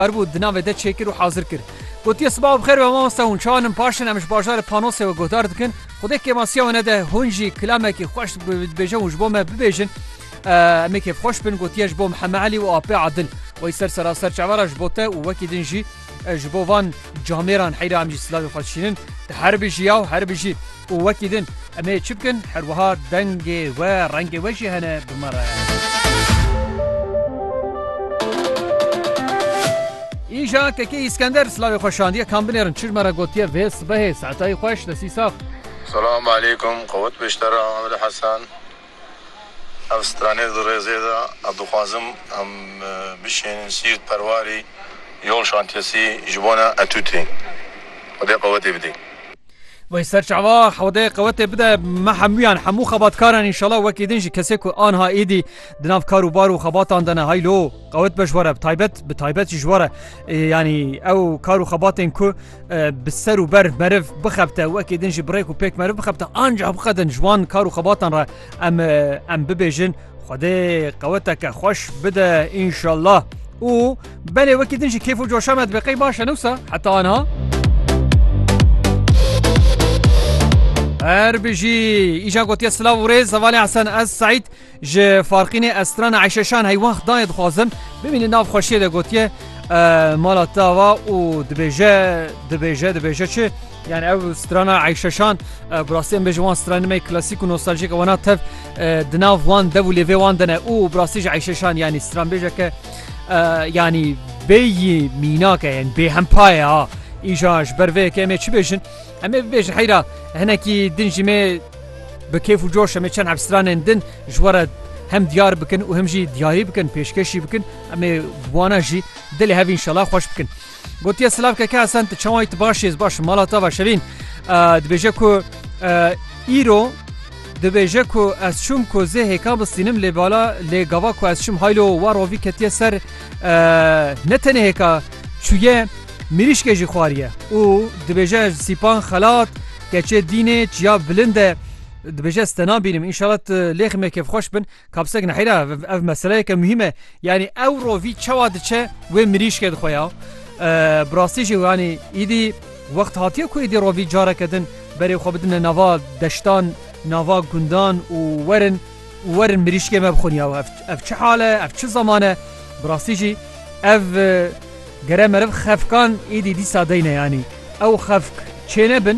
Erbû di navê de çêkir û hazir kir. Gotiye Sibav bi xêr be mamoste hûn çawa nin paşin em ji bajarê Panosê we guhdar dikin. Xwedê kêmasiya we nede hûn jî kilamekî xweş dibêje û ji bo me bibêjin. Em ê kêfxweş bin gotiye ji bo Miheme Elî û Apê Adil. Wey ser seraser çava re ji bo te û wekî din jî ji bo van camêran heyra em jî silavê xwe dişînin. Te herbijî yaw herbijî. Û wekî din em ê çi bikin? Her wiha dengê we, rengê we jî hene bi me re. Îja Kekê Îskender silavê xwe şandiye kam binêrin çir me re gotiye vê sibehê saetayî xweş destî sax. Selam aleykum qewit biştera Amir Hesen Ev stranê di rêzê de ez dixwazim em bişênin Siirt Perwarî yol şantiyesî ji bona etûtê xwedê qewetê bidê. Wey serçava xwedê qewetê bide me hemûyan hemû xebatkaran înşala wekî din jî kesê ku anha êdî di nav kar û bar û xebatan de ne haylo qewet be ji we re bi taybet bi taybet jî ji we re yanî ew kar û xebatên ku bi ser û ber meriv bixebte wekî din jî birêk û pêk meriv bixebte anca bixedin ji wan kar û xebatan re em em bibêjin xwedê qeweteke xweş bide înşallah û belê wekî din jî kêf û coşa me dibeqey baş e newsa heta anha Her bijî îja gotiye silav û rêz hevalê Hesen ez Seîd Ji Farqînê ez strana Eyşeşan heywan xdayê dixwazim. Bimînin nav xweşiyê de gotiye mala tava û dibêje dibêje dibêje çi yani ew strana Eyşeşan birastî em bêjin wan stranî me klasîk û nostalcîk wana tev di nav wan dev û lêvê wan de ne û birastî ji Eyşeşan yanî stranbêjeke yanî bêyî mînake yên bêhempaye ha îja ji ber vê yekê em ê çi bêjin Em ê bibêjin heyra hinekî din jî me bi kêf û coş em ê çend hevsranên din ji we re hem diyar bikin û hem jî diyarî bikin pêşkêşî bikin em ê wana jî dilê hev înşela xweş bikin. Gotiye silav keke Hesen tu çawayî tu baş êz baş mala te baş evîn dibêje ku îro dibêje ku ez çûm ku zê hêka bistînim lê bala lê gava ku ez çûm haylo war rovî ketiye ser ne tenê hêka çûye Mirîşkê jî xwariye û dibêje ez sîpan xelat keçê dînê çiya bilind e dibêje ez te nabînim înşala tu lêximê kêfxweş bin kapsek nehêra ev meseleyeke muhîm e yanî ew rovî çawa diçe wê mirîşkê dixwe ya bi rastî jî yanî îdî wext hatiye ku êdî rovî careke din berê xwe bidine nava deştan nava gundan û werin Werin mirîşkê me bixwin ya ev ev çi hal e, ev çi zaman e. Bi rastî jî ev gere meriv xefkan êdî dîsa deyne yanî ew xefk çênebin